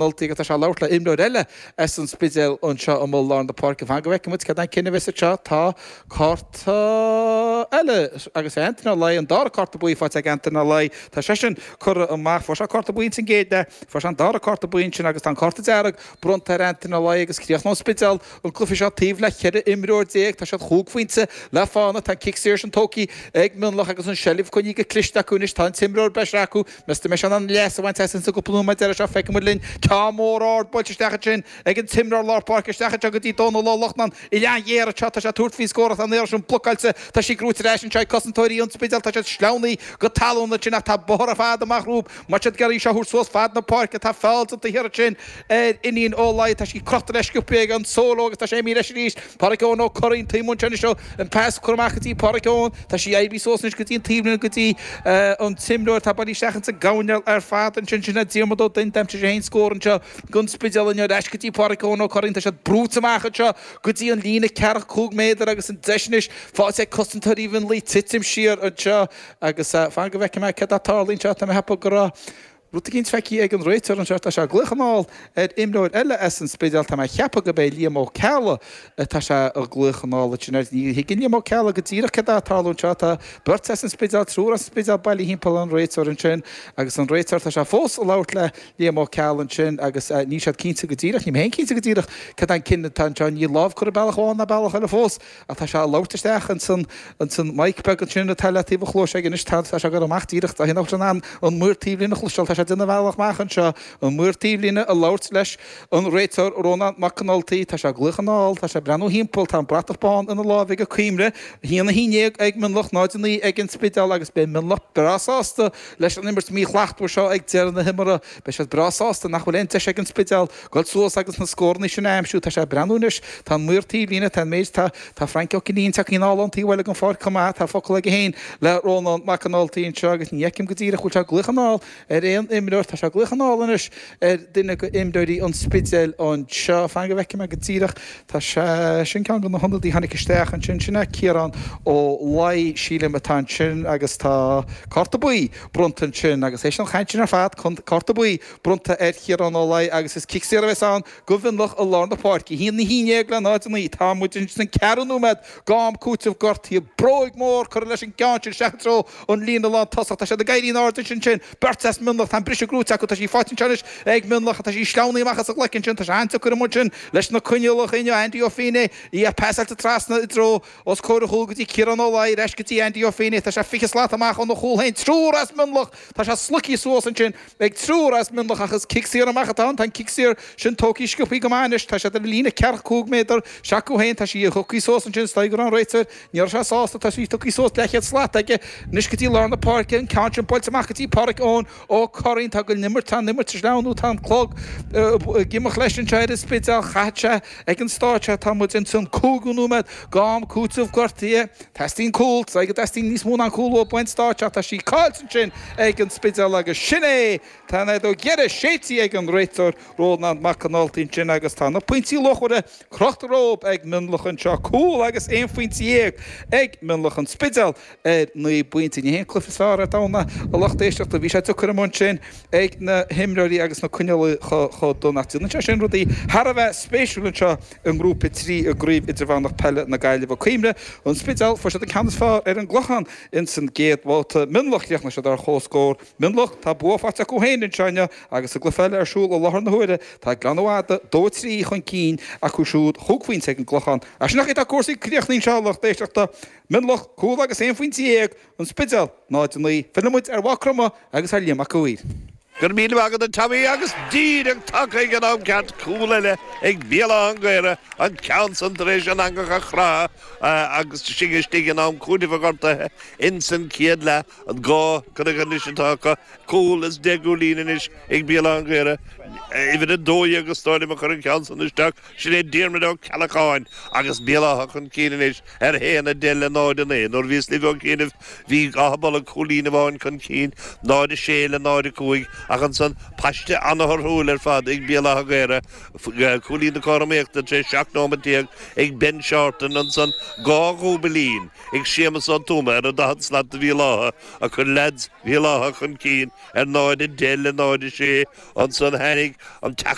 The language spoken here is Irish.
Ultaigh agus tá sé ag labhairt le imreoir eile as an Spidéal anseo amuigh i lár na páirce. Fan go bhfeicfidh muid cad é an cinneadh a bheas anseo. Tá cárta eile agus é Antaine Ó Laoi, an dara cárta buí faighte ag Antaine Ó Laoi. Tá seisean curtha amach. Fuair sé cárta buí sa gcéad leath. Fuair sé an dara cárta buí ansin agus tá an cárta dearg bronnta ar Antaine Ó Laoi agus críochnóidh Spidéal an cluiche seo taobh le cheithre imreoir déag. Tá siad chúig phointe le fána. Tá an cic saor sin tógtha ag Mionlach agus an seilbh coinnithe go cliste acu anois. Tá an t-imreoir breise acu. Meas tú an mbeidh siad in ann leas a bhaint as sin sa gcúpla nóiméad deireadh seo, feicfidh muid linn, ceann mór ard buailte isteach ansin ag an t-imreoir lár páirce, isteach anseo go dtí Dónal Ó Lochnáin, uillinn ghéar anseo, tá sé ag tabhairt faoi scór tá an iarraidh sin blocáilte, tá sí gnóthaithe ar ais anseo ag cosantóirí an Spidéil, tá siad sleamhnaithe go talún ansin ach tá bóthar fada amach rompu, má tá siad ag iarraidh seo a thabhairt suas fad na páirce, tá feall déanta thiar ansin ar Fhinian Ó Laoi. Tá sí crochta leis go scioptha ag an tsúil ó agus tá sé imithe leis arís. Pádhraic Eoghan Ó Curraoin taobh muinteartha anois ó an pas a cuireadh amach go dtí Pádhraic Eoghan. Tá sí imithe suas anois go dtí an taobhlíne go dtí an t-imreoir atá bailithe isteach ins an gcoirnéal ar fad ansin. Sin é Diarmaid Ó Duinn d'aimsigh sé féin scór anseo gon Spidéal inniu. Ar ais go dtí Pádhraic Eoghan Ó Curraoin. Tá siad brúite amach anseo go dtí an líne ceathracha cúig méadar agus an deis anois faighte ag cosantóirí Mhionlaigh titim siar anseo agus fan go bhfeicfidh mé céard a tharlaíonn anseo. Tá mé ag ceapadh go raibh Rud éicint feicthe ag an réiteoir anseo, tá sé ag glaoch anall ar imreoir eile as an Spidéal, tá mé ag ceapadh gurb é Liam Ó Ceallaigh atá sé ag glaoch anall ansin air. Ní thuigeann Liam Ó Ceallaigh go díreach céard atá ag tarlú anseo, tá beirt as an Spidéal, triúr as an Spidéal bailithe thimpeall an réiteoir ansin agus an réiteoir, tá sé fós ag labhairt le Liam Ó Ceallaigh ansin agus níl siad cinnte go díreach, níl mé féin cinnte go díreach cad é an cinneadh atá anseo, níl lámh curtha bealach amháin ná bealach eile fós. Ach tá sé ag labhairt isteach ins an, ins an mic beag ansin atá le taobh a chluais aige anois, tá, tá sé ag gabháil amach díreach, tá an, in ann an maor taobhlíne a chloisteáil, tá sé ag déanamh a bhealach amach anseo, an maor taobhlíne ag labhairt leis an réiteoir Rónán Mac Con Ultaigh, tá sé ag glaoch anall, tá sé ag breathnú thimpeall, tá an bratach bán ina láimh ag an Coimre, a haon, a haon déag ag Mionlach, náid a naoi ag an Spidéal agus beidh Mionlach breá sásta leis an imirt mhíshlachtmhar seo ag deireadh na himeartha, beidh siad breá sásta nach bhfuil aon deis ag an Spidéal Goil suas agus na scóranna sin a aimsiú. Tá sé ag breathnú anois. Tá an maor taobhlíne. Tá an méid atá. Tá Frank Ó Cinnín tagtha anall ón taobh thoir gon pháirc chomh maith. Tá focal aige féin le Rónán Mac an Ultaigh anseo agus ní fheicim go díreach go bhfuil sé ag glaoch anall ar aon imreoir. Tá sé ag glaoch anall anois ar duine go imreoirí an Spidéil anseo. Fan go bhfeicfidh mé go díreach. Tá sé. Sin ceann de na hionadaithe a tháinig isteach ansin. Sin é Ciarán Ó Laoi, sílim, atá ansin agus tá cárta buí bronnta ansin agus tar éis an chaint sin ar fad, cárta buí. bronnta ar Chiarán Ó Laoi agus is cic saor a bheas ann go Mhionlach i lár na páirce. A haon a haon déag le náid a naoi. Tá muid anois sa gceathrú nóiméad, d'am cúitimh gortaithe bróig mhór curtha leis an gceann sin isteach i dtreo an líne lántosach. Tá siad ag éirí in airde ansin sin beirt as Mionlach. Tá an briseadh gnóthaithe acu. Tá sí faighte anseo anois ag Mionlach. Tá sí sleamhnaithe amach as an ghlaic ansin. Tá sé an-deacair amuigh ansin leis na coinníollacha inniu. Andy Ó Feinné í pasáilte trasna i dtreo os comhair a chúl go dtí Ciarán Ó Laoi. Ar ais go dtí Andy Ó Feinné. Tá sé fiche slat amach óna chúl féin. Triúr as Mionlach. Tá sé sloigthe suas ansin, ag triúr as Mionlach ach is cic saor amach atá ann. Tá an cic saor sin tógtha sciobthaí go maith anois. Tá siad ar líne ceathracha cúig méadar s'acu féin. Tá sí tugtha suas ansin is dóigh go raibh an réiteoir, ní raibh sé sásta, tá sí tugtha suas leathchéad slat aige anois go dtí lár na páirce, an ceann sin buailte amach go dtí Pádraic Eoin Ó Curraoin. Tá go n-imirt, tá an imirt ag sleamhnú nó tá an clog ag imeacht leis anseo ar an Spidéal. Caithfidh sé ag an stáitse atá muid insan gcúigiú nóiméad d'am cúitimh gortaithe. Teastaíonn cúl, is dóigh go dteastaíonn níos mó ná cúl amháin ag an stáitse ach tá sí caillte ansin ag an Spidéal agus sin é! Tá an fheadóg dheiridh séidtí ag an réiteoir Rónán Mac an Ultaigh ansin agus tá na pointí luachmhara crochta leo ag Mionlach anseo, cúl agus aon phointe dhéag ag Mionlach An Spidéal ar naoi bpointe. Ní hé an cluiche is fearr ar domhan, a lucht éisteachta. Bhí sé deacair amuigh ansin ag na himreoirí agus na coinníollacha chomh dona ach déanann sé sin rudaí thar a bheith spéisiúil anseo i I nGrúpa 3 i gCraobh Idirmheánach Peile na Gaillimhe. Cuimhnigh, An Spidéal, fuair siad an ceann is fearr ar an gClochán ins an gcéad bhabhta. Mionlach chríochnaigh siad ar chomhscór. Mionlach tá bua faighte acu féin anseo inniu agus an cluiche eile ar siúl i láthair na huaire. Tá Gleann na Madadh 2 3 chun cinn acu siúd chúig phointe ag an gClochán. Ach sin an chaoi atá cúrsaí críochnaithe anseo a lucht éisteachta. Mionlach cúl agus aon phointe dhéag. An Spidéal, 0, 9, Filleann muid ar Mhaigh Chromtha agus ar Liam Mac a' Mhaoir. Go raibh míle maith agat a Tommy agus díreach tagtha ag an am ceart, cúl eile ag Béal Átha an Ghaorthaidh, an ceann san tar éis an eangach a chroitheadh agus sinn istigh in am cúitimh gortaithe ins an chéad leath. An dhá curaidh anois atá acu, cúl is deich gcúilín anois ag Béal Átha an Ghaorthaidh, uimhir a dó dhéag is dóigh liom a chuir an ceann san isteach. Sin é Diarmaid Ó Ceallacháin agus Béal Átha chun cinn anois ar 1 a 10 le 0 a 9. Nuair a bhíos libh ó chianaibh bhí Achadh Bolg cúilín amháin chun cinn, 0 a 6 le 0 a 5, ach ansan, paiste an-thorthúil ar fad ag Béal Átha an Ghaorthaidh, cúilín na cothromaíochta tar éis 17 nóimeant ag Ben Seártan, ansan dhá dhúbailín ag Séamas Ó Tuama ar an daichead slat do Bhéal Átha a chuir leaids Bhéal Átha chun cinn ar 0 a 10 le 0 a 6. Ansan tháinig an.